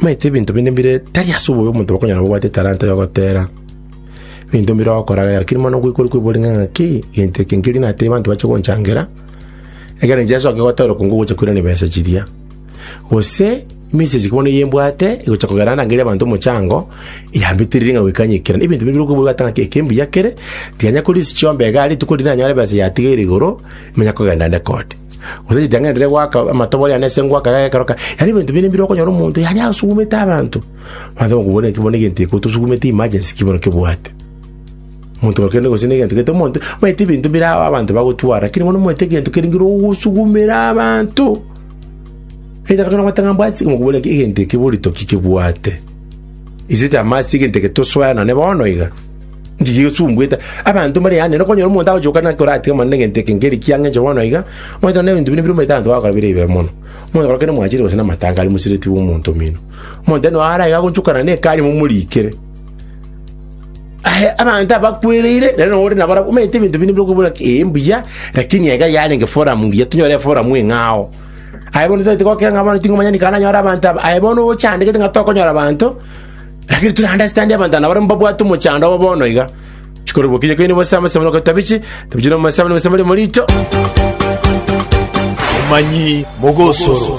Maete ebinto binde mbire tari ase obobe omonto bakonyara kobwata etalanta ya ogotera ebinto mbire ogokora iga, lakini mono ngoikwa ore koiborwa ring'ana ng'a ki, egento eke nkeri natebe abanto bache gonchangera, ekero inche nsoke gotera okonge ogocha koirana ebesa chiria. Gose, emesegi bono eye mbwate, egocha kogera ndangerie abanto omochango, yambetereire ng'a goika nyekera. Na ebinto bire okoiborwa ata ng'a ki, eke mbuya kere, tiga nyakorisia chiomba igaa rituko riria nanyore ebesa yatigeire igoro, ninya kogenda nde kode. Gose ritang'ani riria goaka amatobori ane ase ngoaka yaye ekero kare, yaani ebinto bire mbire okonyora omonto yaani asugumete abanto. Mwansa komoboria ng'aki bono egento eke otosugumete emergency ki bono kebwate? Omonto ore kende gose na egento gete omonto, omanyete ebinto bire ao abanto bagotwara, lakini bono omanyete egento kere nkere ogosugumera abanto. Either kare nabwate ng'a mbwati okomoboria ng'a egento eke borito ki kebwate? Is it a must egento eke tosoe nane bono iga? Ndigesumbuete abanto mbare yane, nokonyora omonto agochoka naki oratige mono negento eke nkeri ki ang'enche bono iga, omanyete na ebinto binde bire omanyete abanto bagokora bire ebibe mono. Omonto korokire omwanchire gose namatanga aria mosireti bw'omonto omino. Omonto noyo ara iga agonchokana nekari momorikere. Aye abanto abakwereire, nere nonya ore nabarabwo, omanyete ebinto binde bire okobuna ki ee mbuya, lakini iga yarenge forum ngiya, tonyore eforum eng'ao. Aye bono tabeti gokira ng'a bono ting'omanya nikare nanyore abanto aba, aye bono ogo ochandegete ng'a tokonyora abanto, Rakeri tore aande ase tande abanto anga nabarabwo mbabwate omochando obo bono iga. Chikoro bokinye koine bose amo esamero okotwa bichi, tabichi na omosabe na omosabe ri'omorito. Omanyi mogosoro.